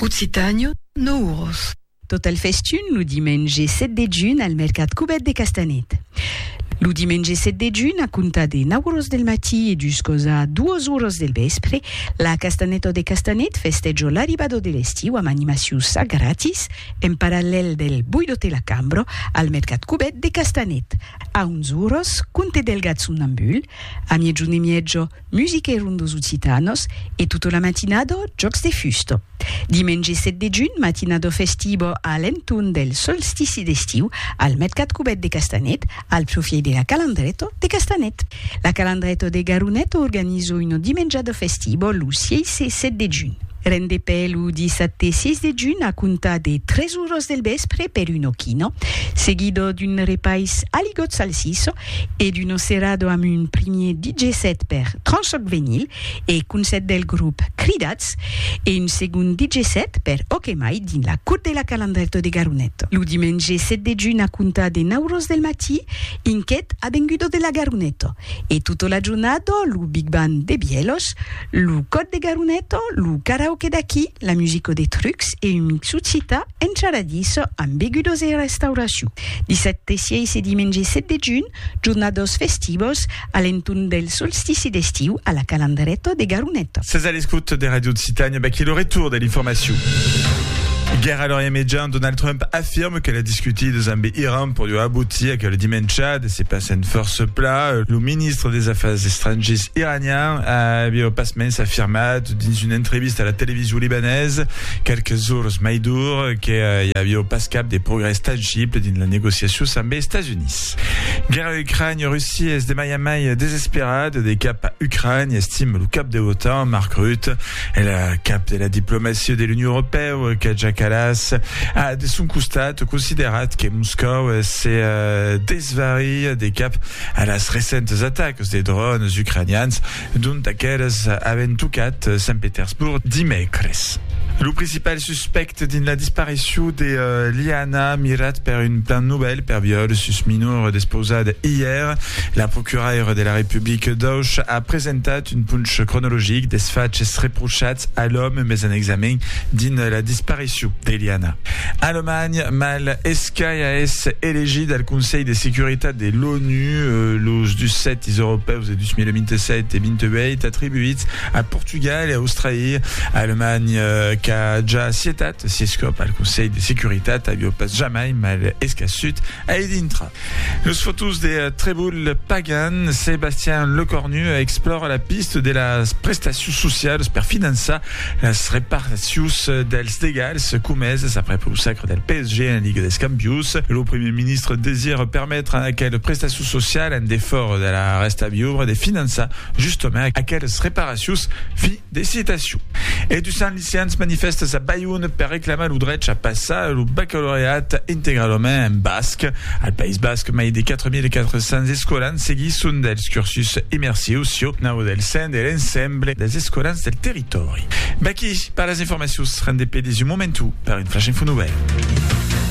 Occitània, Nouros. Tot el festun lo dimenge 7 de junh al mercat Cubet de Castanet. Lo dimenge 7 de junh, a comptar de 9 oras del matí e juscos a 2 oras del vèspre, la Castanèta de Castanet festèja l'arribada de l'estiu amb animacions a gratis en parallèl del Boido te la Cambra al mercat cubèt de Castanet. A 11 oras, Conte del Gat Somnambul, a miègjorn e mièja, Musique ron dos Occitanos e tota la matinada jòcs de fusta. Dimenge 7 de junh, matinada festiva a l'entorn del solstici d'estiu al Mercat Cubèt de Castanet, al profièit de la Calandreta de Castanet. La Calandreta de Garoneta organiza una dimenjada festiva lo 6 e 7 de junh. Rendepè lo dissabte 6 de junh a comptar de 3 oras del vèspre per una quina, seguida d'un repais aligot salsissa e d'Uno Cerrado amb un primier DJ set per Tranchoc Venyl e Concèrt del grop Cridats e un segond DJ set per Ok Mai dins la Cour de la Calandrèto de Garonet lo dimenge 7 de junh a comptar de 9 ros del matí inquet Avengudo de la Garoneto e tota la jornada lo Big Band de Bièlhos Lo còd de Garuneto, lo karaoke d'aquí, la musico de trucs e un mixut cita encharadís amb begudos e restauracion. Dissabte 6 e dimenge 7 de junh, jornados festivos a l'entorn del solstici d'estiu a la Calandreto de Garuneto. Sètz a l'escòuta de Radio Occitània, vaquí lo retorn de l'informacion. Guèrra a l'Orient Mejan, Donald Trump afirme que las discutidas amb Iran pòdion aboutir aquel dimèncha de se passar en fòrça pla. Lo ministre des Afars Estrangiers iranian, Iranian aviá au pasmens afirmat dins una entrevista a la television libanesa quelques jorns mai dur que i aviá pas cap de progrès tangible dins las negociacions amb es Estats Units. Guèrra Ucrània, Russia es de mai en mai desesperada de cap a Ucrània, estima lo cap de l'OTAN, Mark Rutte. El cap de la diplomacia de l'Union Europèa, Kaja Kallas, a de son costat considerat que Moscòu se Svariá de cap a las recentes atacas de dròns ucranians dont aqueles avent tocat Sant Petersborg dimècres. Lo principal suspècte dins la disparicion de Liana, mirat per un plan novèl per viòl sus minor despausat ièr, la procuraira de la Republica d'Auch a presentat un ponch cronologic dels faches reprochats a l'òme mes en examen dins la disparicion de Liana. Alemanha, mal escai a èsser elegida al Conselh de Securitat de l'ONU los dus sètis europèus de 2027 e 28 atribuits a Portugal e Australia. Alemanha qu'a ja acietat sies còp al Conselh de Securitat avió pas jamai mal escassut a i dintrar. Los fotós de Treboul Pagan, Sébastien Lecornu explòra la pista de las prestacions socialas per finançar las reparticions dels degals comesas aprèp lo sacre del PSG en Liga dels Campions. Lo primièr ministre desira permetre a aquelas prestacions socialas, en defòra de la rèsta viubra, de finançar justament aquelas reparacions financèras. De citacion. E du Sant Licians manifèstas a Bayonne per reclamar lo drech a passar lo bacalaureat integralament en basc. Al País Basc, mai de 4.400 escolans seguisson dels cursus immersius sieu nau del sen de l'ensemble dels escolans del territòri. Vaquí per las informacions, rendez-pe-les un momentu per un Flash Info Novèl.